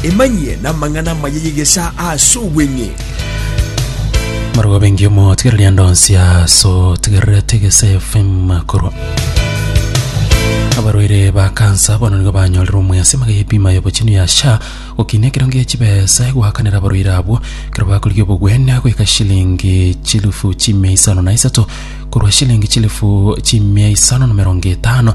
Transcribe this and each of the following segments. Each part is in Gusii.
Emanyie namang'ana amaya y'egesaa ase obweng'e. Marwa bengi omotigereria ndonsia so tigererete gese FM korwa abarwaire ba kansa bono nigo banyorire omwesi magaye bima yobochenu ya sha gokina ekerongo ya chibesa goakanera abarwaire abwo kero bakorigia obogwenia goika shilingi chilifu chimia isano na isato korwa shilingi chilifu chimia isano na merongo etano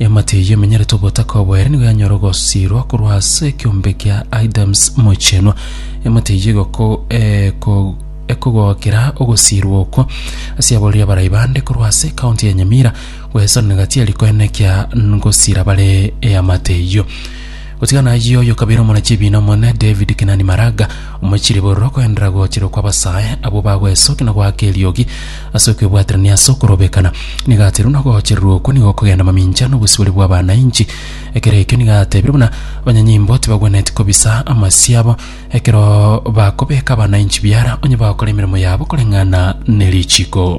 Eamate eyio emenyerete obotaka obo ere nigo yanyora ogosiirwa korwa ase ekeombe kia Adams Mochenwa. Eamate eyio egoko eko ekogokera ogosiirwa okwo ase aborori abarai bande korwa ase ekaunti ya Nyamira, goesanana gati ya rikoene kia ngosiira bare eamate eyio. Gotiga nayio oyo kabere omona chibiina omonene David Kenani Maraga, omochirie bororo okoenderera gochera okw'abasae abwo bagwesokia na goaka eriogi ase okwebwaterania ase okorobekana. Nigo ateirwe buna ogochererwa okwo nigo okogenda mamincha nobosibore bw'abanainchi. Ekero ekio nigo atebirie buna abanyanyimbo tibagwenereti kobisa amasio abo ekero bakobeka abanainchi biara onye bagokora emeremo yabo koreng'ana nerichiko.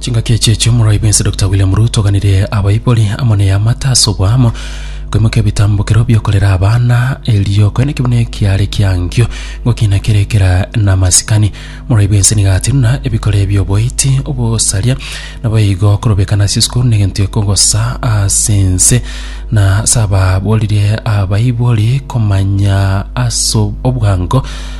chingaki echi echi omoraai bwense Dr William Ruto oganire abaibori amo na eamate ase oboamo koimokia ebitambokero biokorera abana erio koene ekibuno ekiare kiankio ngokina kere ekera na amasikani omoraai bwense nigo atinuna ebikore bioboiti obosaria nabo igo korobekana ase esukuru negento ekogosa ase ense na ase ababoririe abaibori komanya ase obwango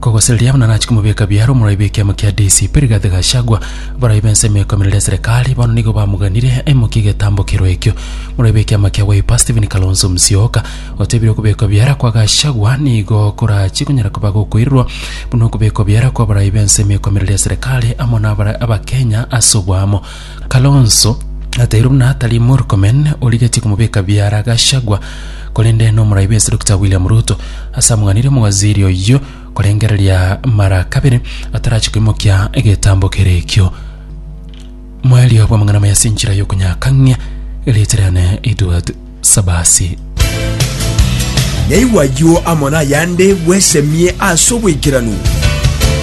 Kogosereria buna nachi komobeka biara omorwai b'ekiama kia DCP Rigathi Gachagua, abarwai b'ensemo ekoimerera eserekari bono nigo bamoganire aimokie egetambo kerwa ekio. Omorwai b'ekiama kia Wiper Stephen Kalonzo Musyoka otebire okobekwa biara kwa Gachagua nigo korachie konyara koba gokoirerwa buna okobekwa biara kw'abarwai b'ensemo ekoimerera eserekari amo nabare abakenya ase oboamo. Kalonzo atairwe buna atari Murkomen origetie komobeka biara Gachagua korende n'omoraibe ase Dokita William Ruto ase among'anire omowaziri oyio korengereria mara kabere atarachi koimokia egetambo kere ekio. Moerio bw'amang'ana maya ase enchera y'okonyakang'ia erieta riane Edward Sabasi. Naigwa ayio amo nayande bwesemie ase obwaikeranu.